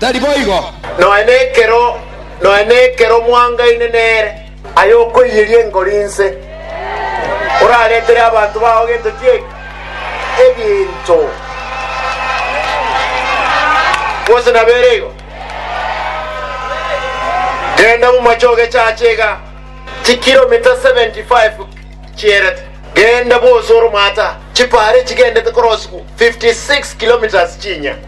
Tari boigo! Nonya nekero, nonya nekero mwangaine nere. Aye okoiyeria enkoro inse, oraretere abanto bao gento ki eke? Egento, gose nabere igo? Genda bomache ogechache iga, chikiromita seventy five chierete. Genda bwose oromata, chipara echigendete korosigwa fifty six kilometres chinya.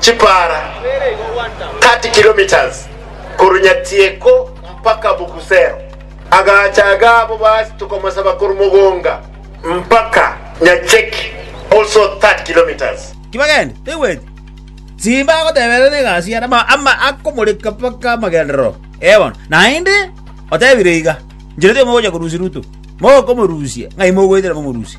chipara 30 kilometres korwa Nyatieko mpaka Bugusero. Agacha agabo basi tokomosaba korwa Mogonga mpaka Nyacheki also 30 kilometres. Tibagende, taigweti. Simba agoteberera negasi yane, ama, ama akomoreka mpaka amagenderero ee bono. Naende otebire iga, Nchirete mogocha korusia Ruto, mokomorusia, ng'ai mogoetera momorusie?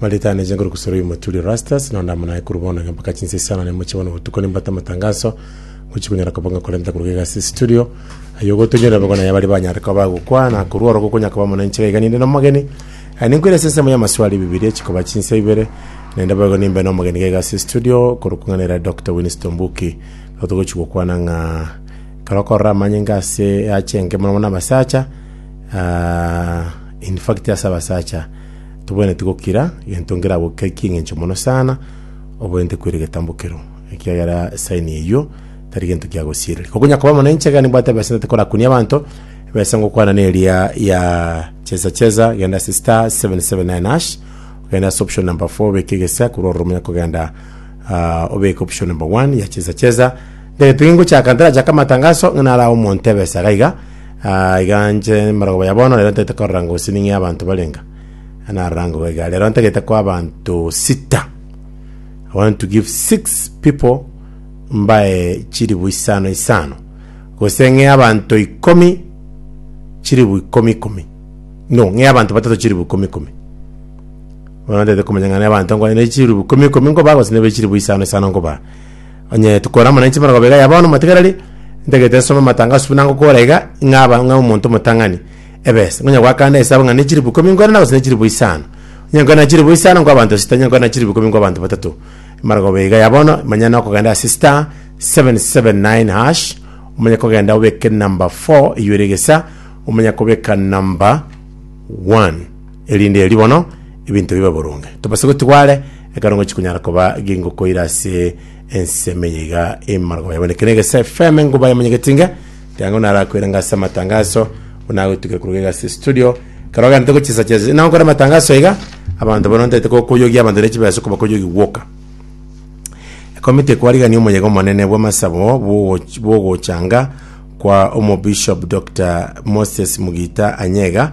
Maritani eche nkoru kusoro y'omoturi Erastus, na onde amo naye korwa bono mpaka chinsa isano na imochie bono botuko nimbate amatangaso, ngochia konyora koba ng'a korenta koruga iga ase estudio, ayio ogotonyorera bobe konaye abari banyare koba bagokwa, na korwa oro gokonyara koba amo nainche iga iga ninde nomogeni. Aye ninkoire ase ensemo y'amaswali Bibilia chikoba chinsa ibere, naende boigo nimbe nomogeni iga iga ase estudio, korwa kong'aneire Doctor Winstone Mbuki. Igo togochia gokwana ng'a ekero okorora amanyinga ase eache enke mono mono abasacha, ah, in fact ase abasacha, Tobwenereti gokira gento ngeragokekie engencho mono sana, obwenerete koira egetambo kero, ekiagera saini eyio tari gento kia gosiereria. Kokonya koba mono inche, ekero nimbwate ebesa ntate korakunia abanto, ebesa ngokwana neria ya cheza cheza, genda ase star 779 hash, ogende ase option number 4 obeke egesa, korwa ororo monya kogenda ah, obeke option number 1 ya cheza cheza. Ndagete ningochaka, ntarachake amatangaso, ng'a narae omonto ebesa iga iga, Ah, iga inche emorogoba ya bono, rero ntagete korora gose ning'e abanto barenga. Narora ngogo iga, rero ntagete kwa abanto sita. I want to give six people mbae chiribu isano isano. Gose ng'e abanto ikomi chiribu ikomi ikomi. No, ng'e abanto batato chiribu ikomi ikomi. Bono ntagete komanya ng'a ne abanto nkwane ne chiribu ikomi ikomi nkoba gose nebe chiribu isano isano nkoba. Onye tokore amo nainche bono iga ya bono motigareri ntagete nsome amatangaso buna ngokora iga ng'a aba ng'a omonto omotang'ani ebesa ngonya goakana esabu ng'a ne chilifu ikomi nkore na gose ne chilifu isano onye nkore na chilifu isano nkwa abanto sita onye nkore na chilifu ikomi nkwa abanto batato emarogobia iga ya bono manya nokogenda ase star 779 hash omanye kogenda obeke number 4 eywo ere egesa omanye kobeka number 1 erinde erio bono ebinto bibe boronge. Tobase gotigwa are, ekero ngochia konyara koba gingokoira ase ense emenya iga emargoma yabo. Neke negese FM engo bayemanyegetie inge, tiga ng'o narakoirenge ase amatangaso, ng'o nagotugire koruga iga ase studio, ekero ogenderete gochia esacha ase na gokora amatangaso iga, abanto bono ntaete kokoyogia abanto ne chibesa okobakoyogia gwoka. Ekomiti ekwarigania omoyega omonene bw'amasabo bw'ogoch- bw'ogochanga kwa Omobishop Doctor Moses Mugita Anyega,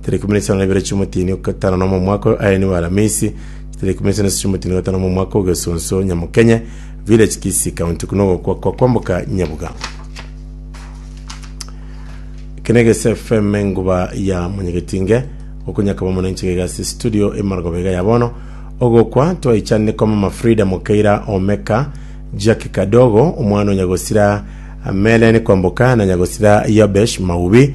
Chitara ikomi na isano na ibere chi'omotini o gatano nomo omwaka o Aeni wa Alamisi, chitara ikomi na isano na isano chi'omotini o gatano nomo omwaka o Gesonso Nyamokenye, Village Kisii County, kuna ogokwa kwa kwamboka Nyabuga. Kene gese FM enguba ya Monyegetinge, okonyakaba mono enchega igasi studio emargoba iga ya bono. Ogokwa twaichanire kwa mama Frida Mokeira Omeka, Jackie Kadogo, omwana o Nyagosira Melen Kwamboka na Nyagosira Yobesh Maubi,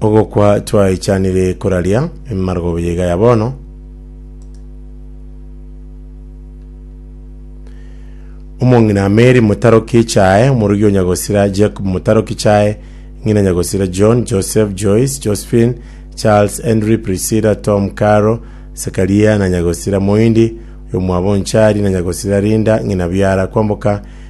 Ogokwa twaichanire koraria emargoba yaiga ya bono. Omong'ina Mary motaroki chae, omorugi o Nyagosira Jacob motaroki chae, ng'ina Nyagosira John, Joseph, Joyce, Josephine, Charles, Henry, Priscilla, Tom, Caro, Sekaria na Nyagosira Moindi, oyo mwabo Nchari na Nyagosira Linda, ng'ina Biara kwamboka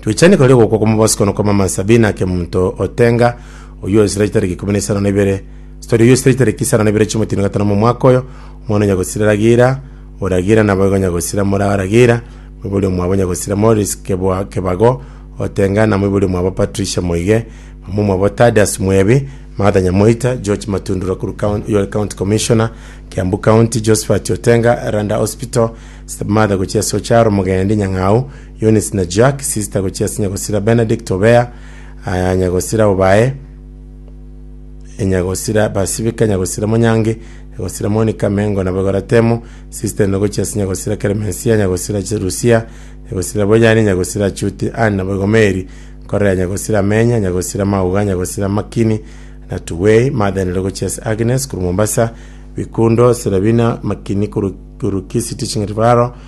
Twechani kare ogokwa kw'amabosiko na okw'amamasa Sabina ake omonto o Tenga, oyio oisire chitariki ikomi na isano na ibere, Stori oyio oisire chitariki isano na ibere chi'omotino gatano mw'omwaka oyo, omwana o nyagosira Ragira, o Ragira naboigo nyagosira mora Ragira, moibori omwabo nyagosira Moris kebwa kebago o Tenga, na moibori omwabo Patricia moige, mama omwabo Tadius mwebi, Martha Nyamoita, George Matundura korwa coun- oyio ore County Commissioner, Kiambu County, Josphat o Tenga, Randa Hospital, Stepmother gochia ase o Charo, Mogendi, Nyang'au, Eunice na Jack, sister gochia ase nyagosira Benedict Obea, aa, nyagosira Obae, e, nyagosira Basibika, nyagosira Monyange, nyagosira Monica, Mengo na Bogora Temo, sister ende gochia ase nyagosira Clemencia, nyagosira Ch- Lucia, nyagosira Boyani, nyagosira Achuti, Anne na Bogomeri, Korea, nyagosira Amenya, nyagosira Mauga, nyagosira Makini na Tuwei, Martha ende gochia ase Agnes korwa Mombasa, Bikundo, Serabina, Makini korwa korwa Kisiti Ching'iti Faro,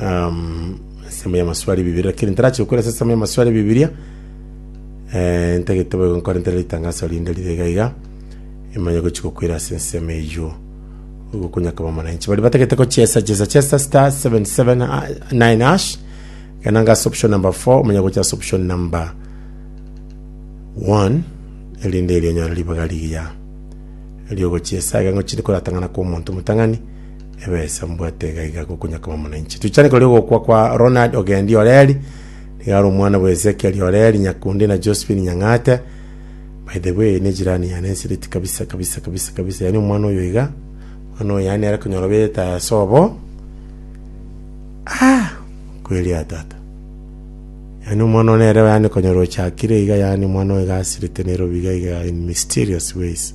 um, esemo ya maswali bibiria lakini ntarachi gokora ase esemo ya maswali bibiria eh, ntagete boigo nkore ntere ritangaso rinde rire iga iga imanye gochi gokwera ase ensemo eyio gokonyakaba omonanchi bari batagete gochesa chesa chesa star 779 hash kana ngase option number 4 omanye gocha ase option number 1 erinde erionyora ribaga rigiya eriogochesa iga ngochiri koratang'ana kwa omonto motang'ani Ebesa mbwate iga iga gokunya koba muna inche. Tuchane kori ogokwa kwa Ronald Ogendi Oreri, nigo are omwana bwa Ezekiel Oreri Nyakundi na Josephine Nyang'ate. By the way, ne jirani yane ensiriti kabisa kabisa kabisa kabisa, yani omwana oyo iga, omwana oyo yani are konyora obete ase obo. Ah, kweria tata. Yani omwana one ere yani konyora ochakire iga yani omwana oyo iga asirite Nairobi iga iga in mysterious ways.